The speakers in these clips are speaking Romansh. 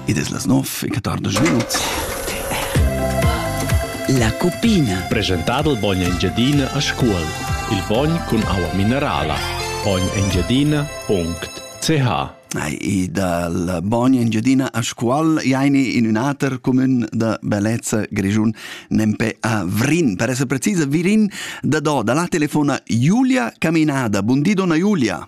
Id es las nov e quatordisch minuts. La cupina. Presentad il bogn Engiadina a Scuol. Il bogn cun aua minerala. Bognengiadina.ch E dal Bogn Engiadina a Scuol jaini in un ater comun da bellezza grischun nempe a Vrin. Per essere precisa, Virin da do dalla telefona Giulia Caminada. Buondì, donna Giulia.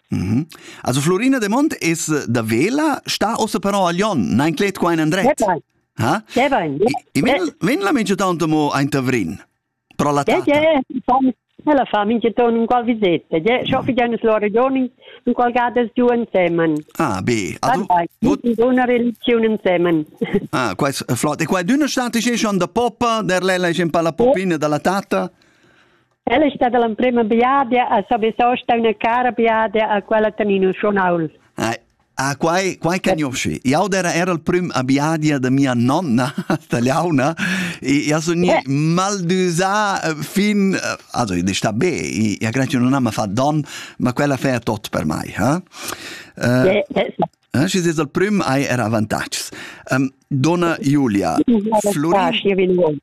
Mm Also Florina de Mont es da Vela, sta ossa però a Lyon, na inclet qua in andret. Ha? Vin vin la mengia tanto mo ein Tavrin. Pro la tata. Ella fa mincha ton un qual visetta. Je, scho fi gnanus lora giorni un qual gadas giù insemen. Ah, be. Also, una religione insemen. Ah, qua è flott. E qua d'una stata c'è schon da poppa, der lella è un po' la poppina dalla tata. Ella è stata l'emprima biadia a Savisaw sta una cara biadia a quella Tanino Schonaul. Ah, quai, quai cagnosci. Jau era era il prim abiadia de mia nonna, tagliauna, e io sono yeah. maldusà eh, fin... Eh, also, io sta be, io grazie non ha fatto don, ma quella fa tot per me, eh? Uh, eh, yes. Eh, și zis il prim ai era avantages. Um, dona Julia, Florin...